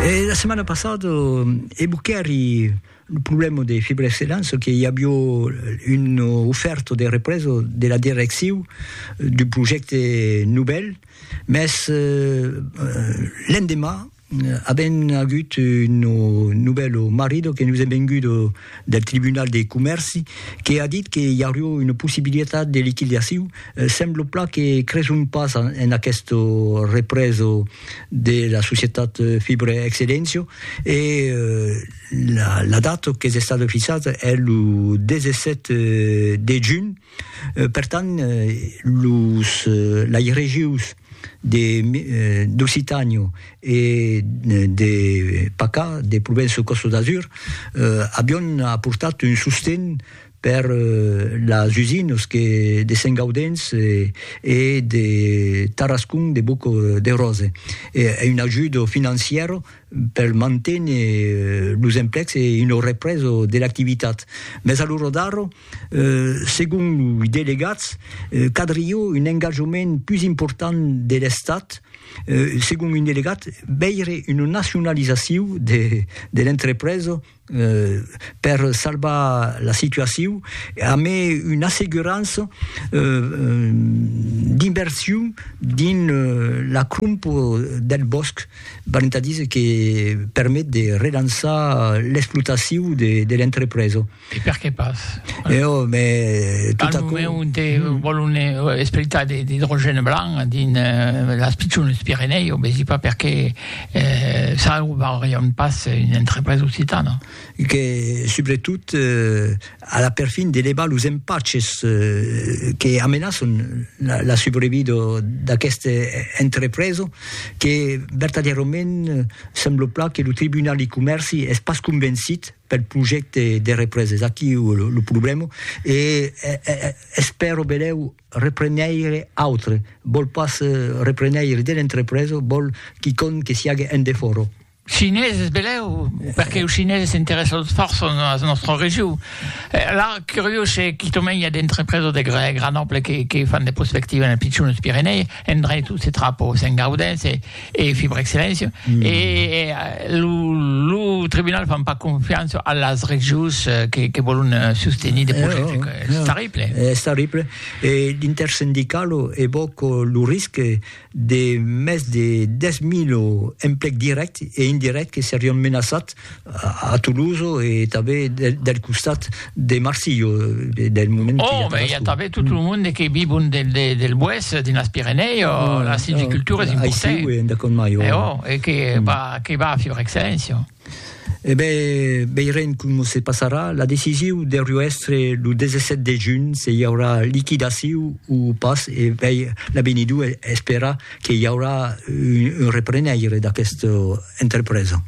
E la setmana passada e Buccheri lo problema de Fibra Excellence que i avió un ofèrta de represa de la direcciu d'un projècte novèl, mès l'endemà avèm agut un novèl marida que nos es venguda del Tribunal de Comèrci que a dit que i aurió una possibilitat de liquidaciu, semblo pla que creson pas en aqueste represo de la societat Fibre Excellencio e la data qu'es estada fixada es lo 17 de junh. Per tant, los lairejus de d'Occitània e de Pacà, de Provença Costa d'Azur, avion aportat un sosten per las usinas que de Sent Gaudens e de Tarascon de Boc de Rose, e una ajuda financièra per manténer los emplecs e una represa de l'activitat. Mès a l'ora d'ara, segon los delegats, cadriá un engatjament pus important de l'Estat, segon un delegat, veire una nacionalizacion de l'entrepresa. per salvar la situacion amé una assegurança d'inversion dins la cromp del bòsc, valent a díser que permet de relançar l'explotacion de l'entrepresa. E perqué pas? Eo, me tot aquò. Al moment onte vòlon espletar de l'idrogène blanc dins las pichones Pirenèus, vesi pas perqué. E salvarion pas una entrepresa occitana. Que, subretot, a la perfin de levar los empaches que amenaçon la subrevida d'aquesta entrepresa, que vertadièrament sembla plan que lo Tribunal de Comèrci es pas convencit pel projècte de represa. Es aquí lo problèma e espèro benlèu Repreneire autre, vòl pas repreneire de l'entrepresa, vòl quicòm que siague en defòra. Chineses, belèu, perque los chineses s'interèssan fòrça a la nòstra region. La curiós se quicòm i a d'entrepresa de gran ample que fan de prospectiva en Pichon, los Pirenèi, en drei tot se trapa, se'n gaudèn, se. e fi brèc silenci e lo tribunal fan pas confiança a las regions que que vòlon sostenir de projècte es terrible es terrible e l'intersindical evòca lo risque de mès de 10.000 emplec dirèct e indirèct que serion menaçats a Toloso e tanben del costat de Marsillo del moment oh mais il y a tanben tout le monde qui vit bon del del del bois dans les Pyrénées oh, la silviculture est importante ici oui d'accord mais oh, oh et qui va qui va faire excellence Eh ben, veirem com se passarà. La decision de Ruestre le 17 de juny se hi haurà liquidació o pas e vei l'avenidor espera que hi haurà un, un reprenaire d'aquesta entrepresa.